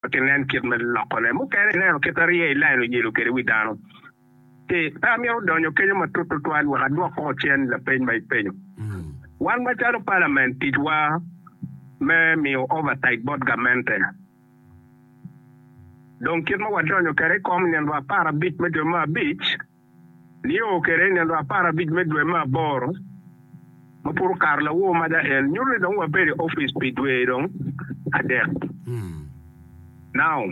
pe ginen kit me lokone. Mukene ineno kit arye i lain oyelo kwede wi dano. Pe amito donyo kenyo matut tutwal wek adwok koko cen lapeny ma ipenyo. Wan macalo Palament, ticwa me miyo oversight bot gamente. Dong kit ma wadonyo kwede i kom nino apar abic me dwe me abic, Nio kede i nino apar abic me dwe me aboro, ma pud okato lawor maja en, nyuto ni dong wabedo i opic pi dwe dong adek. Nao,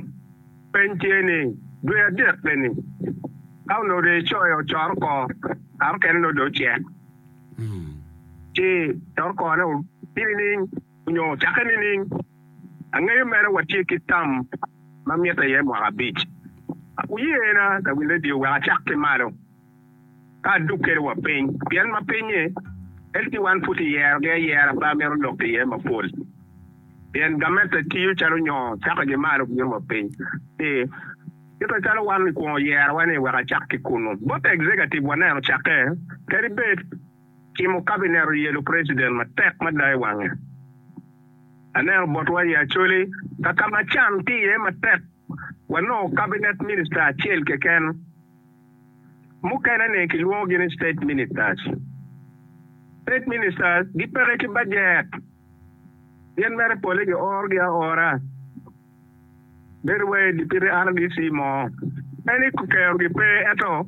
Peny tye ni, dwe adek eni, ka onongo dong icoyo ocoro oko, kare okene nongo dong ocek, ci coro okone otye nining, onyo ocakke nining? Angeyo mere watye ki tam ma mitte iye mwaka abic. Wuyena lawil redio wek acak ki malo ka aduk kede wa piny pien ma pinye en ki wan pud tiyero gi ayera pe amito lok iye mapol pien gamette tiyo calo nyoo cako gi malo biro wa piny ki kite calo wan ikwongo yerowa ni wek acak ki kunu. Bot executive waneno cake kadi bed. Timo kabinet oyelo preciden matek mada i wange. Aneno botwa i Acholi ka ka Machan tye iye matek wanongo kabinet minista acel keken. Mukene ni kilwongo gi ni state ministers. State ministers gipeke ki bajet pien mere pole gioro gi aora. Bedo wai di pire RDC mo. En i kero gi pe ento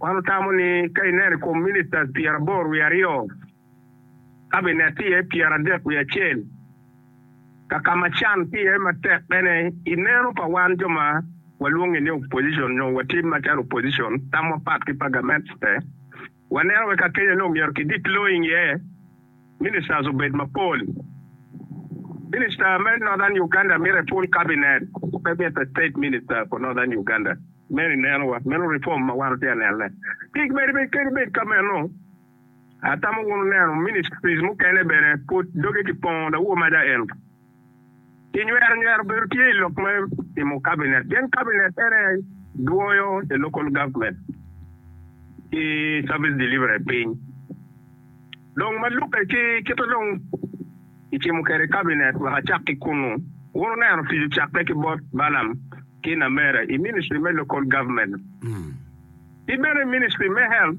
wan wutamo ni ka ineno i kom ministers pyera aboro wiye aryo, cabinet tye iye pyera adek wiye acel, kaka ma can tye iye matek bene i neno pa wan jo ma walwongi ni opposition nyo watim macalo opposition tam wapat ki pa gamente. Waneno bene ka kenyo ni omyero kidit loo i nge ministers obed mapol. Minister me Northern Uganda mite full cabinet, pe mite state minister for Northern Uganda. Meno i neno wa, meno reform ma wan watye ka nene. Tic bene pe kadi bed ka meno, atamo wunu neno ministries mukene bene pud doge kipongo dok woo maja en. Kinywero nywero bedo tye i lok me timo Kabinet pien Kabinet ene dwoyo the local government ki service delivery piny. Dong ma lubbe ki kite dong kicimo kwede Kabinet wek acak ki kunnu. Wun wuneno tic ocakke ki bot Balam ki Namera i ministry me local government ki bene i ministry me health.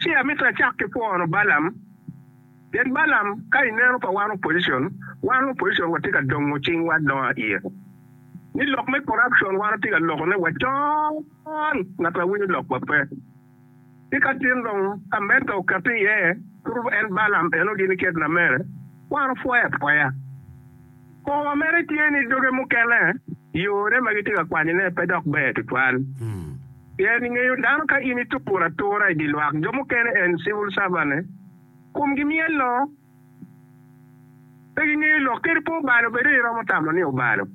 Ci amito acak ki pwono Balaam, pien Balaam ka i neno pa wan opposition, wan opposition watye ka dongo cingwa adonga iye. Ni lok me corruption wan watye ka lokone wa con, ngat ma winyo lokwa pe. Ci ka tin dong America okette iye, turu en Balaam eno gini kit na mere, wan wapwoye apwoya. Kong wa mere tye ni doge mukene yone ma gitye ka kwanyone pe dok ber tutwal. Pien ingeyo dano ka in ituro atura i dye lwak jo mukene en civil servant-ne, komgi myello. Pe gingeyo lok kadi pe obalo bene iromo tamo ni obalo.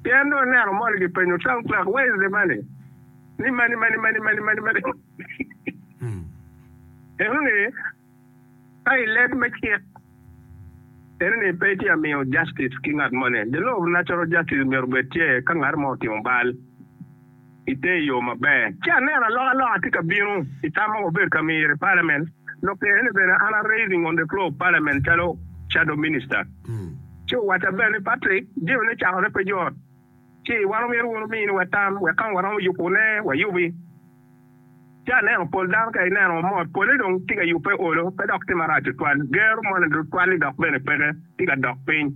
Pien dong aneno moni kipenyo Sam Clark Wednesday mani ni mani mani mani mani mani mani. Eno ni, Ka i leb me cik, en ni pe itye ka miyo justice ki ngat moni. The law of natural justice omyero obed tye ka ngat mo otimo bal i te yo maber. Ci aneno alokaloka tye ka bino i tam ma wabedo ka miro i parliament, lok kene ni bene an a raising on the floor of parliament calo shadow minister. Ci owacca bene ni Patrick, jami ne cakone pe jot. ci wan omyero wunu miniwa tam wek ka waromo yubune, wayubi. Ci aneno pol dano ka ineno mot pole dong tye ka yubbe olo, pe dok tye marac tutwal, ger moni tutwal-li dok bene peke tye ka dok piny.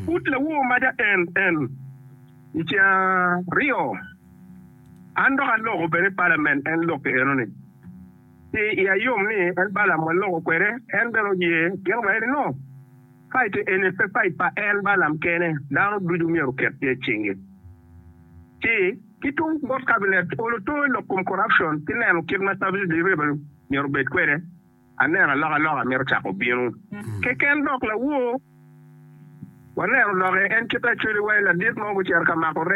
Pud lawowo maca en, en, i ceng aryo, an dok aloko bene palamen en lokke enoni, ci iya yom ni en Balaam waloko kwede, en bene oye gin maeni-nu. Fait eni pe fait pa en Balaam kene, dano ducu myero oket tye i cingi. Ci, ki tung bot kabinet, olo too i lok kom corruption ki neno kit ma service delivery myero obed kwede, aneno alokaloka mito cako bino. Keken dok lawor, waneno doki en kite acweliwa i ladit mo gucito ka mako rec.